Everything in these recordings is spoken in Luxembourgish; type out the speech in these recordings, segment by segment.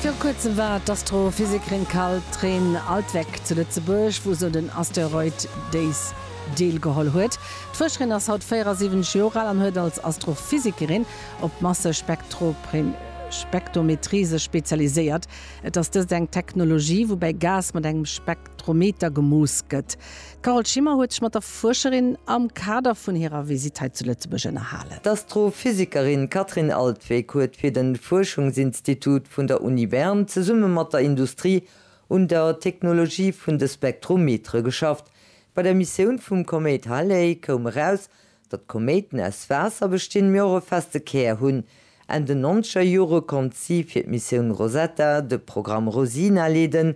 Viru kuerzem war d'Astrophysikerin Carl-Tréine Altweck zu Lëtzebuerg, wou se un den Asteroid Days deelgeholl huet. D'Fuerscherin ass haut 74 Joer al an huet als Astrophysikerin op d'Massespektrometrie sech spezialiséiert. Et ass dëst eng Technologie, woubäi Gas mat engem Spektrometer gemooss gëtt. D'Carole Schimmer huet sech mat der Fuerscherin am Kader vun hirer Visitt hei zu Lëtzebuerg ënnerhalen. D'Astrophysikerin Kathrin Altweg huet fir den Fuerschungsinstitut vun der Uni Bern zesumme mat der Industrie un der Technologie vun de Spektrometere geschafft. Bei der Missioun vum Koméit Halley koum eraus, datt Koméiten aus Waasser bestinn, mee och e feste Kär hunn. Enn den nonzeger Jore konnt si fir d'Missioun Rosetta de Programm Rosina leeden,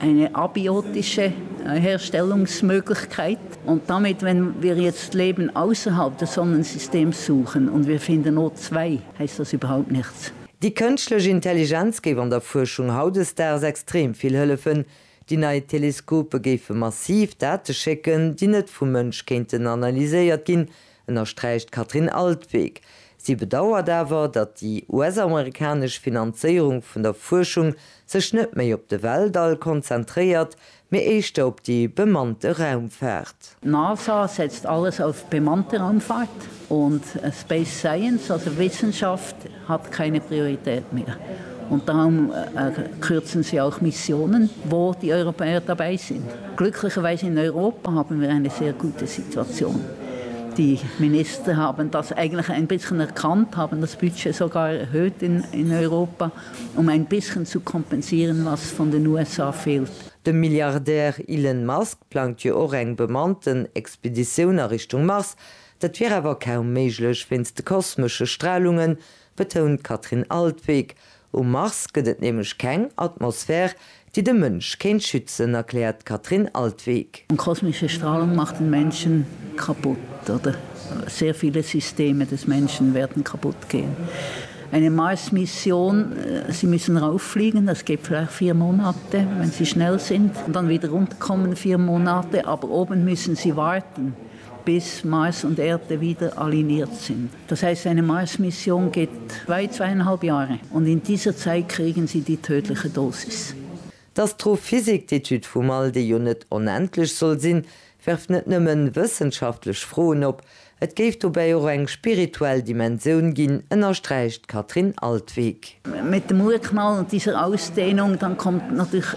Eine abiotische Herstellungsmöglichkeit und damit, wenn wir jetzt Leben ausserhalb des Sonnensystems suchen und wir finden O zwei, heißt das überhaupt nichts. Déi kënschtlech Intelligenz géif an der Fuerschung hautdesdaags extrem vill hëllefen. Déi nei Teleskope géife massiv Date schécken, déi net vum Mënsch kéinten analyséiert ginn, ënnersträicht d'Katrin Altweg. Si bedauert awer, datt déi US-amerikanesch Finanzéierung vun der Fuerschung sech net méi op de Weltall konzentréiert, mee éischter op déi bemannte Raumfaart. D'NASA setzt alles auf bemannte Raumfahrt und Space Science, also Wissenschaft, Hat keine Priorität mehr und darum kürzen sie auch Missionen, wo die Europäer dabei sind. Glücklicherweise in Europa haben wir eine sehr gute Situation. Die Minister haben das eigentlich ein bisschen erkannt, haben das Budget sogar erhöht in Europa, um ein bisschen zu kompensieren, was von den USA fehlt. De Milliardär Elon Musk plangt jo och eng bemannten Expeditioun a Richtung Mars. Dat wier awer kaum méiglech wéinst de kosmesche Stralungen, betount d'Katrin Altwegg. Um Mars gëtt et nämlech keng Atmosphär, déi de Mënsch kéint schützen, erkläert d'Katrin Altwegg. Kosmesche Strahlung macht den Menschen kaputt oder sehr viele Systeme des Menschen werden kaputt gehen. Eine Marsmission, Sie müssen rauffliegen, das geht vielleicht vier Monate, wenn Sie schnell sind, und dann wieder runterkommen, vier Monate, aber oben müssen Sie warten. bis Mars und Erde wieder aligniert sind. Das heißt, eine Mars-Mission geht weit zweieinhalb Jahre und in dieser Zeit kriegen sie die tödliche Dosis. D'Astrophysik, d'Etüd vum All, déi jo net onendlech soll sinn, werft net nëmme wëssenschaftlech Froen op, et géif dobäi och eng spirituell Dimensioun ginn, ënnersträicht d'Katrin Altwegh. Mit dem Urknall und dieser Ausdehnung, dann kommt natürlich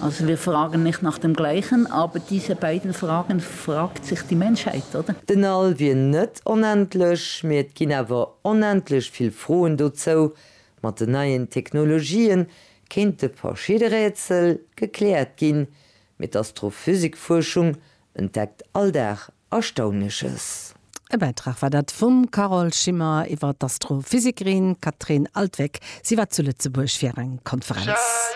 Also wir fragen nicht nach dem Gleichen, aber diese beiden Fragen fragt sich die Menschheit, oder? Den All wier net onendlech, mee et ginn awer onendlech vill Froen dozou. Mat den neien Technologië kéinte verschidde Rätsel gekläert ginn, mee d'Astrophysikfuerschung entdeckt all Dag Erstaunleches. E Bäitrag war dat vum Carole Schimmer iwwer d'Astrophysikerin Catherine Altwegg. Si war zu Lëtzebuerg fir eng Konferenz.